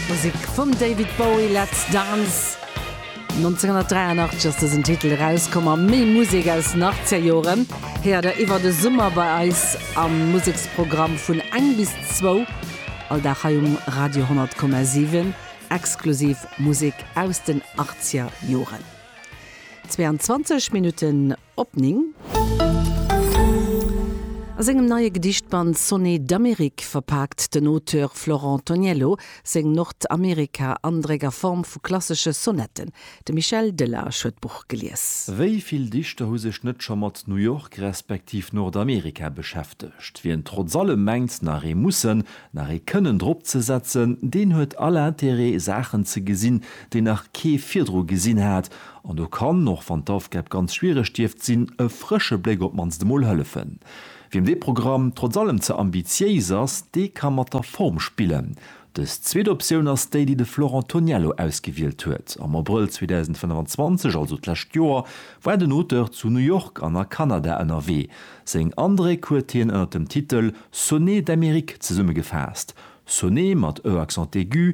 D'Musek vum David Bowie, Let's Dance. 1983 ass dësen Titel erauskomm a méi Musek aus den Achtzegerjoren héiert der iwwer de Summer bei eis am Museksprogramm vun eng bis zwou all Dag hei um Radio 10,7. Exklusiv Musek aus den Achtzegerjoren. 22 Minutten Op 9. A sengem neie Gedichtband Sonnet d'Amérique verpaakt den Auteur Florent Toniello seng Nordamerika-Andréck a Form vu klassesche Sonetten. De Michel Delage huet d'Buch gelies. Wéi vill Dichter hu sech net scho mat New York respektiv Nordamerika beschäftegt? Wien trotz allem mengt, nach ee mussen, nach ee kënnen drop ze setzen, deen huet all Interêt, Saachen ze gesinn, déi nach kee virdru gesinn hat, An do kann, och wann d'Aufgab ganz schwiereg dierft sinn, e frësche Bléck op d'mannst emol hëllefen. Wiem dee Programm trotz allem ze ambitiéis ass, dee ka mat der Form spillen. Dës zweet Optioun ass déi, déi de Florent Toniello ausgewielt huet. Am Abrëll 2025, also d'lescht Joer, war den Auteur zu New York an a Kanada ënnerwee. Seng Andréck huet hien ënner dem Titel Sonnets d'Amérique zesummegefaasst, Sonnete mat e accent aigu,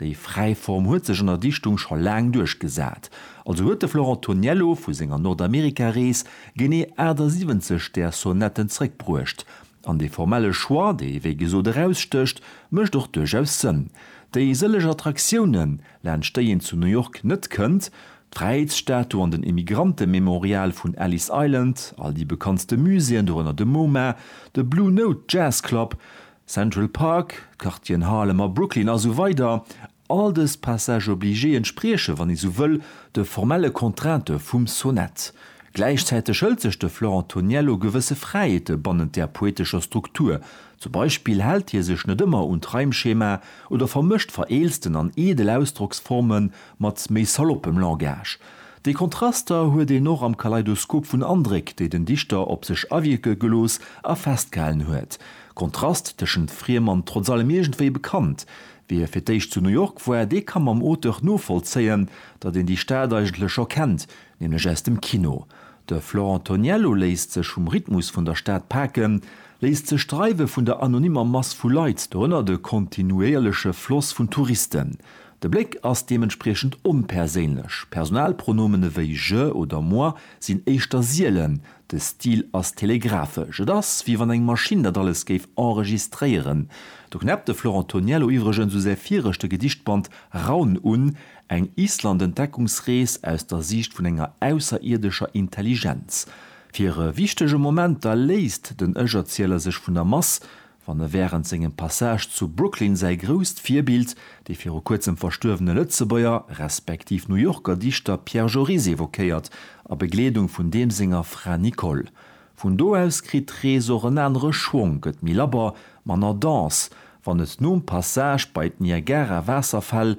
Déi fräi Form huet sech an der Dichtung scho laang duerchgesat. Also huet de Florent Toniello vu senger Nordamerika-Rees genee 78 där Sonetten zréckbruecht. An dee formelle Choix, dee wéi gesot erausstécht, mécht och duerchaus Sënn. Déi sëlleg Attraktiounen, laanscht déi een zu New York net kënnt, d'Fräiheetsstatu an den Immigrantememorial vun Ellis Island, all déi bekanntste Muséeën, dorënner de MoMA, de Blue Note Jazz Club, Central Park, d'Quartieren Harlem a Brooklyn a sou weider, all dës Passages obligés entsprieche, wann ee sou wëll, de formelle Contraintë vum Sonett. Gläichzäiteg hëlt sech de Florent Toniello gewësse Fräiheete bannent där poetescher Struktur, zum Beispill hält hie sech net ëmmer un d'Reimschema oder vermëscht vereelzten an eedel Ausdrocksforme mat méi saloppem Langage. Déi Kontraster huet een och am Kaleidoskop vun Andréck, déi den Dichter op sech awierke gelooss a festgehalen huet. De Kontrast tëschent friem an trotz allem iergendwéi bekannt. Wie fir d'éischt zu New York war, dee ka mam Auteur novollzéien, datt een déi Stad eigentlech scho kennt, nämlech aus dem Kino. De Florent Toniello léisst sech vum Rhythmus vun der Stad paken, léisst sech dreiwe vun der anonymmer Mass vu Leit, dorënner de kontinuéierleche Floss vun Touristen. De Bléck ass deementspriechend onperséinlech, Personalpronomen ewéi je oder moi sinn éischter sielen, De Stil ass telegraphesch, et ass wéi wann eng Maschinn dat alles géif enregistréieren. Do knäppt de Florent Toniello iwwregens u säi viregte Gedichtband Raun un, eng Island-Entdeckungsrees aus der Siicht vun enger ausserierdescher Intelligenz. Fir e wichtege Moment da léisst den Ech-Erzieler sech vun der Mass, Wann e wärend sengem Passage zu Brooklyn säi grousst Virbild, dee viru kuerzem verstuerwene Lëtzebuerger, respektiv New Yorker Dichter Pierre Joris evoquéiert, a Begleedung vun deem senger Fra Nicole. Vun do aus kritt d'Rees och en anere Schwong, gëtt méi labber, manner dense, wann et nom Passage bei d'Niagara-Waasserfäll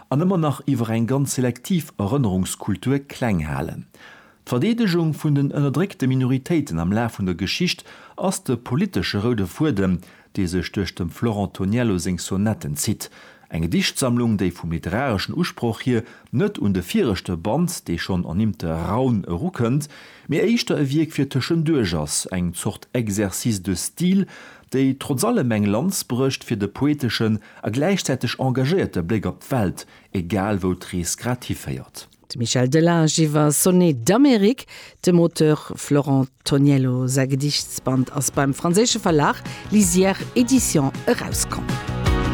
an ëmmer nach iwwer eng ganz selektiv Erënnerungskultur kleng halen. D'Verdeedegung vun den ënnerdréckte Minoritéiten am Laf vun der Geschicht ass de politesche roude Fuedem, dee sech duerch dem Florent Toniello seng Sonetten zitt. Eng Gedichtsammlung, déi vum literareschen Usproch hier net un de viregte Band, dee schonn ernimmte Raun, erukënnt, mee éischter e Wierk fir tëschenduerch ass, eng Zort Exercice de style, déi trotz allem eng Lanz brécht fir de poeteschen a gläichzäiteg engagéierte Bléck op d'Welt, egal wou d'Rees grad hiféiert. De Michel Delage iwwer Sonnets d'Amérique. Dem Auteur Florent Toniello säi Gediichtsband ass beim franséische Verlag Lisière Edition erauskomm.